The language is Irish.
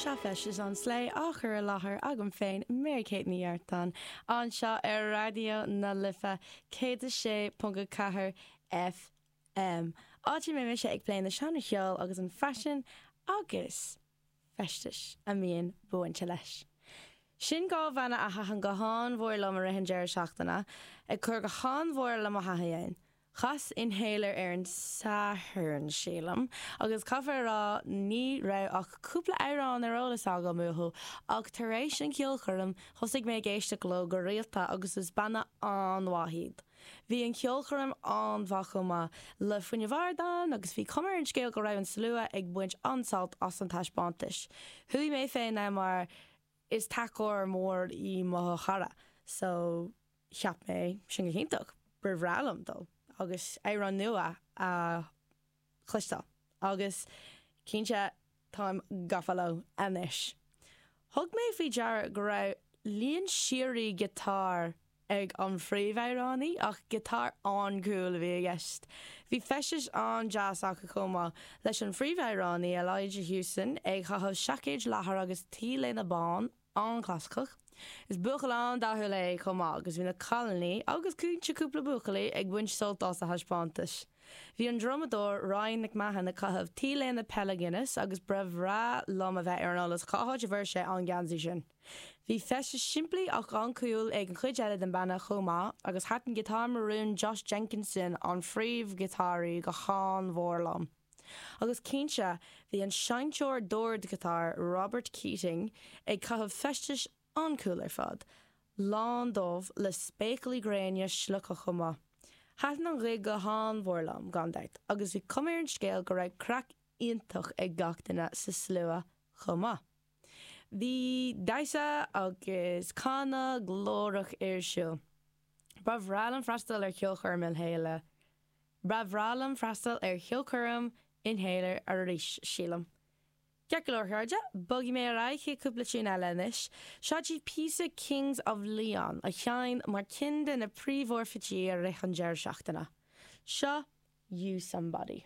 Seo Feistis an tSlé á chur i láthair agam féin, Mary Kate Ní Artáin, anseo ar Raidió na Life 106.4 FM, áit a mbeidh mise ag plé na seánra cheoil agus an faisean agus feistis a mbíonn bainte leis. Sin dhá bhanna a thaitin go han-mhór liom i rith an deireadh seachtaine, ag cur go han-mhór le mo thaithí féin. Chas Inhaler ar an Satharn, sílim, agus caithfear a rá ní raibh ach cúpla amhrán ar eolas agam uathu ach tar éis an cheolchoirm thosaigh mé ag éisteacht leo go rialta agus is banna an-mhaith iad. Bhí an cheolchoirm an-mhaith chomh maith, le fuinneamh ard ann agus bhí cuma ar an scéal go raibh an slua ag baint an-sult as an taispeántais. Chuaigh mé féin mar is tacóir mór í mo chara so. cheap mé cinnte go mba bhreá liom dul agus amhráin nua a chloisteáil agus cinnte táim gafa leo anois. Thug mé faoi deara go raibh líon síoraí giotáir ag an phríomhamhránaí ach giotáir an-cool a bhí i gceist. Bhí feistis an-deas acu chomh maith, leis an phríomhamhránaí, Elijah Hewson, ag chaitheamh seaicéid leathair agus T-léine bán, an-chlasaiceach. Is buachaill an-dathúil é chomh maith agus bhí na cailiní agus cinnte cúpla buachaillí ag baint sult as a thaispeántais. Bhí an drumadóir Ryan McMahon ag caitheamh t-léine peile Guinness agus ba bhreá liom a bheith ar an eolas cá háit a bhfuair sé an geansaí sin. Bhí feisteas simplí ach an-cool ag an chuid eile den banna chomh maith agus thaitin giotár marún Josh Jenkinson, an phríomh-ghiotáraí, go han-mhór liom. Agus cinnte, bhí an seinnteoir dordghiotár Robert Keating ag caitheamh feistis an-cool ar fad, lán dubh le spéaclaí gréine slioctha chomh maith. Thaitin an gig go han-mhór liom, gan dabht, agus bhí cuma ar an scéal go raibh craic iontach ag gach duine sa slua chomh maith. Bhí damhsa agus canadh glórach ar siúl. Ba bhreá liom freastal ar cheolchoirm Inhaler Ba bhreá liom freastal ar cheolchoirm Inhaler arís, sílim. Ceart go leor, a chairde, bogfaidh mé ar aghaidh chuig cúpla tune eile anois. Seo daoibh píosa Kings of Leon, a sheinn mar ceann de na príomhfhorfaittí i rith an deireadh seachtaine. Seo Use Somebody.